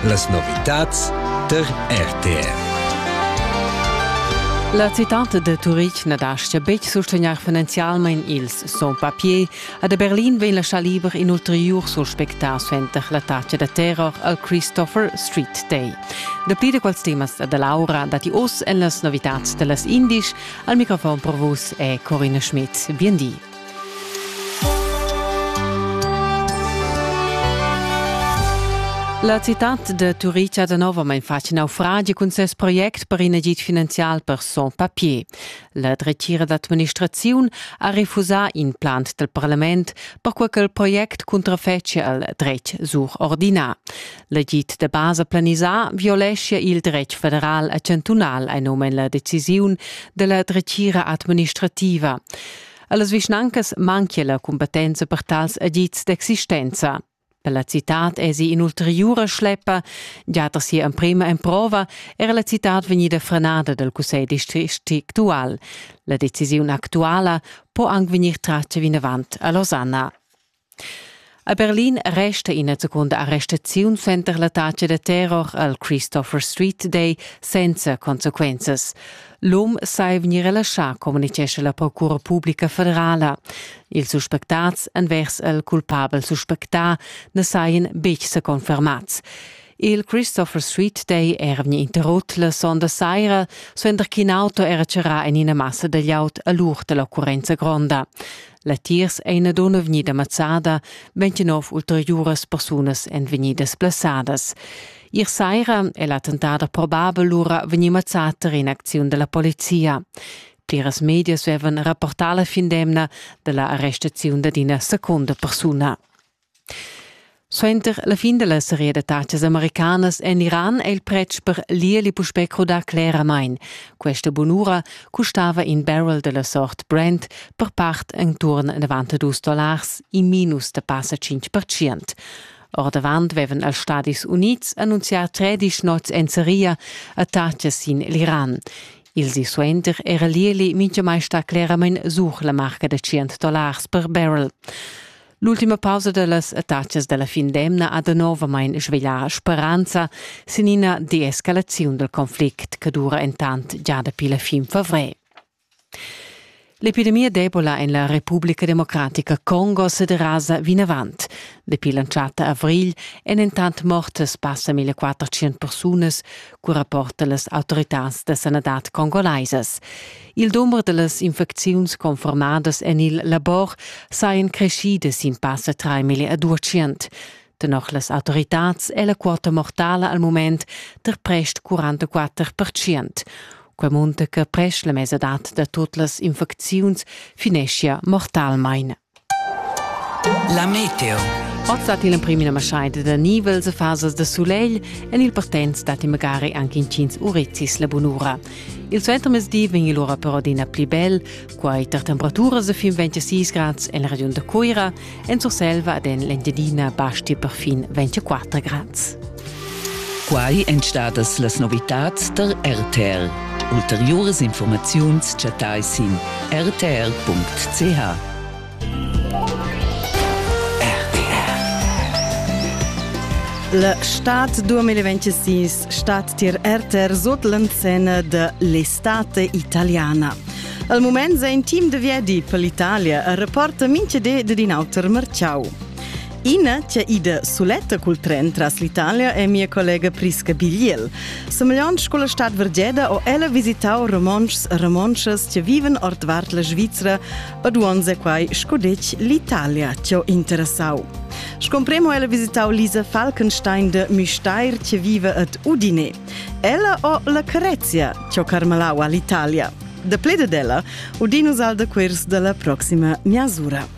Las novitads tar RTR. La citad de Turitg na dastga betg sustegnair finanzialmain ils sans papiers a de Berlin vegn lascià liber in ulteriur suspectà suenter l'attacca da terror al Christopher Street Day. Dapli da quels temas da Laura datti oz en las novitads da las Indisch. Al microfon per vus è Corinna Schmidt. Bien di. La citad de Turica da novamein fatg naufragi cun ses project per in agid finanzial per son papier. La dretgira d'administraziun ha refusà in plan del parlament perquei che il project contrafecia al dretg surordinà. L'agid de basa planisà violescia il dretg federal e chantunal ein omen la decisiun della dretgira administrativa. Allas vischnancas manchia la cumpetenza per tals agits d'existenza. Per la citad esi in'ulteriura schleppa, già da sia emprema emprova era la citad vegnida frenada dal cussegl district actual. La decisiun actuala po anc vegnir tratga vinavant a Losanna. A Berlin resta ina secunda arrestaziun center la taxa da terror al Christopher Street Day senza consequenzas. L'um sai vegnir relaschà, communitgescha la Procura publica federala. Ils suspectats envers il culpabel suspectà na sajan betg sa confermads. Il Christopher Street Day era vegni interrut la sonda saira, suenter ch'in auto era charrà en ina massa da llaut a l'ur da l'occurrenza gronda. Latiers ei ina dunna vegnida mazzada, ventginov ulteriuras persunas ein vegnidas blessadas. Ier saira è l'attentat probabel lura vegnì mazzat tar in'acziun della polizia. Pliras medias avevan rapportà la fin d'emna della arrestaziun d'ina secunda persuna. Suenter la fin dalla seria da tatgas americanas en Iran è il pretsch per lieli puspè crudà cleramain. Questa bunura custava in barrel dalla sort Brent per part enturn 92 dollars in minus da passa 5%. Ordavant vevan els Stadis Unids annunzià 13 nots en seria a tatgas sin l'Iran. Il di suenter era Lieli mintgamai stà cleramain sur la marca da 100 dollars per barrel. L'ultima pausa dellas attacas dalla fin d'emna ha danovamein sveglià speranza sin ina deescalaziun dal conflict che dura entant già dapi la fin favrer. L'epidemia d'Ebola en la Repubblica Democratica Congo sederasa vinavant. Dapi l'entschatta avrigl èn entant mortas passa 1400 persunas, cu rapportan las autoritads da sanadad congolaisas. Il dumber da las infecziuns confermadas en il labor sajan crescidas sin passa 3 mille a duecient. Tenor las autoritads è la quota mortala al mument tar prest 44 percent. Quai munta che prest la mesadad da tut las infecziuns fineschia mortalmain. La meteo. Ozza til emprim ina maschaida da nivels e fasas da sulegl en il Partenz datti magari anche intgins urezis la bunura. Il suentermezdi vegn lura però adina pli bel, quai tar temperaturas da fin 26 grads en la regiun da Cuira, en Surselva ed en l'Engiadina basti perfin 24 grads. Quai èn stadas las novitads tar RTL. Ulteriuras informaziuns chattai sin rtr.ch. La stad 2026 stat tier RTR sot l'enzena de l'estate italiana. Al moment è in team de viedi per l'Italia a reporta minche de din auter marciau. Ina che ida suletta cul tren tras l'Italia è mia collega Prisca Bigliel. Semegliant sco la stad Vergeda ho ella visitau romontschs e romontschas che viven ordvart la Svizra ed uonz è quai sco detg l'Italia che ho interessau. Scompremo ella visitau Lisa Falkenstein de Müstair che vive ad Udine. Ella ho la Carezia che ho carmalau all'Italia. De plede della, Udinus al de quirs della proxima miasura.